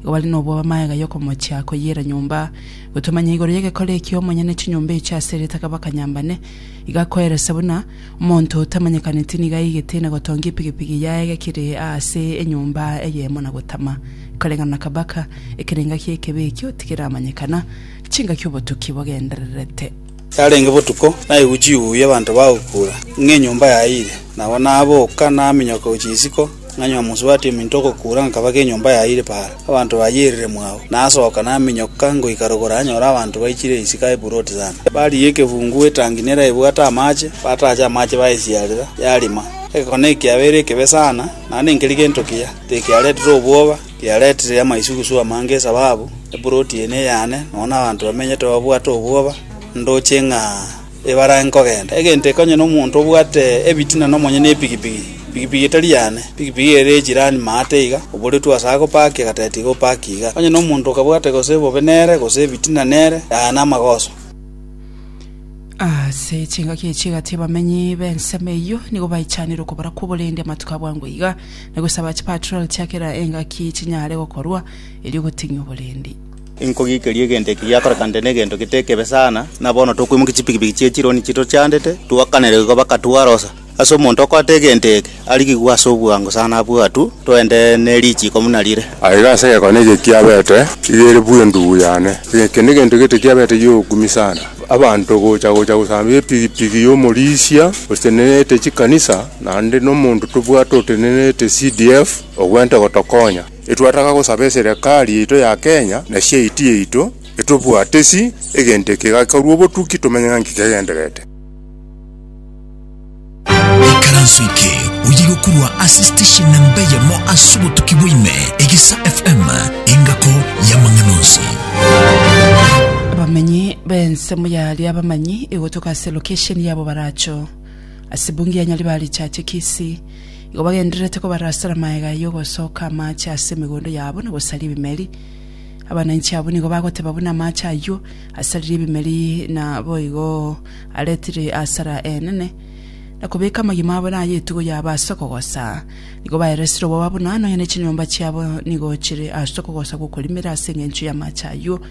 Igo bare nobwoba magega y'okomochia koyiira nyomba. Gotomanya igoro y'egekora ekio omonyene chinyomba echio ase eritaka bakanyambane. Igo akoeresa buna omonto otamanyekaneti nigo aigete na gotongia epigipigi yaye egekire aase enyomba eyemo na gotama koreng'ana na kabaka. Ekerenga ki'ekebe ekio tigeramanyekana, chingaki obotuki bogendererete. Yarenge botuko, naigwe chihuyu abanto bagokura, ng'a enyomba yayiire. Nabo naboka, naminyoka gochia isiko, nganywa mosubati ominto ogokura, nkabaka enyomba yayiire paara, abanto bayierire mwao. Nasoka, naminyoka, ngoika rogoro nanyora abanto baichire isiko aye buroti sana. Barigia ekebuungu gw'etangi neraibwate amache, bataacha amache bayesiarera, yarima. Egekone ekiabeire ekebe sana, naende nkeri gento kiya, tikiaretire obwoba. Yaretire amaisugusu amange esababu eploti eye neyane, nonya nabanto bamenyete babwate obwoba, ndoche ng'a ebarage nkogenda. Egento eke onye nomonto obwate ebitina nomonye nepigipigi, pigipigi etari yane, pigipigi ere yechirani maate iga, oboretwe gose agopaki agateba tiga opaki iga. Onye nomonto okabwate gose ebobe nere, gose ebitina nere, yaya namagoso. Ase chingaki echi egati abamenyi b'ensemo eyio nigo baichanire okobora kw'oborendi amatuko abwango iga. na gosaba chipatrol chia kera engaki chinyare gokorwa, erio goting'e oborendi. Inkogiikeria egento eke giakorekanete negento gete ekebe sana, na bono tokoimokia chipikipiki chie chironi chitochandete, twakanere igo bakatwarosa. Ase omonto okoata egento eke, arigigwe ase obwango sana abue atu, toende ne richiiko buna rire. Aiga ase egekone eke kiabete iga ere bwe endubu yane. Eke negento gete kiabete gi'ogokumi sana, abanto gocha gocha gosambia epigipigi y'omorisia, gose tenenete chikanisa, Naende nomonto tobwate otenenerete CDF ogwente gotokonya. Etwataka gosaba eserekari yaito ya Kenya na chiaiti yaito etobwate si egento eke gekorwa obotuki tomenye ng'a nki kegendererete. Ekaranso eke oye gokurwa ase station namba eyemo ase obotuki bwa ime, Egesa FM, engako y'amang'ana onsi. Abamenyi b'ensemo yaria abamanyi, igotoka ase location yabo baracho. Ase bungi ya Nyaribare richache Kisii, igo bagendererete kobarasera magega ayio ogosooka amaache ase emegondo yabo na gosaria ebimeri. Abananchi abwo nigo bagoteba buna amaache ayio asaririe ebimeri na boigo aretire asara enene. Na kobeka amagima abo na aya etugo yabo ase okogosa, nigo baeresire oboba buna nonya ne chinyomba chiabo nigo chire ase okogosa gw'okorimera ase engencho y'amaache ayio.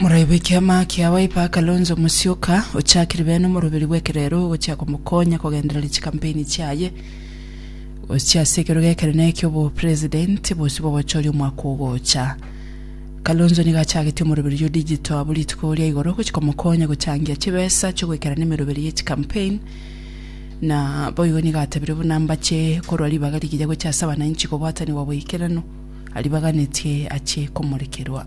Moraigwe ekiama kia Wiper Kalonzo Musyoka, ochakire bene omoroberi bw'ekerero ogochia komokonya kogendereria chikampeini chiaye gochia ase ekerogo ekenene ki'obopresidenti bosio bw'obochori omwaka ogocha. Kalonzo nigo achagetie omoroberi oyio digital abwo rituko ria igoro gochia komokonya gochangia chibesa chi'ogoikera nemeroberi ye chikampein na boigo nigo atebire buna mbache korwa ribaga rigiya gochia ase abananchi kobwatanigwa boikeranu aribaganetie achie komorekerwa.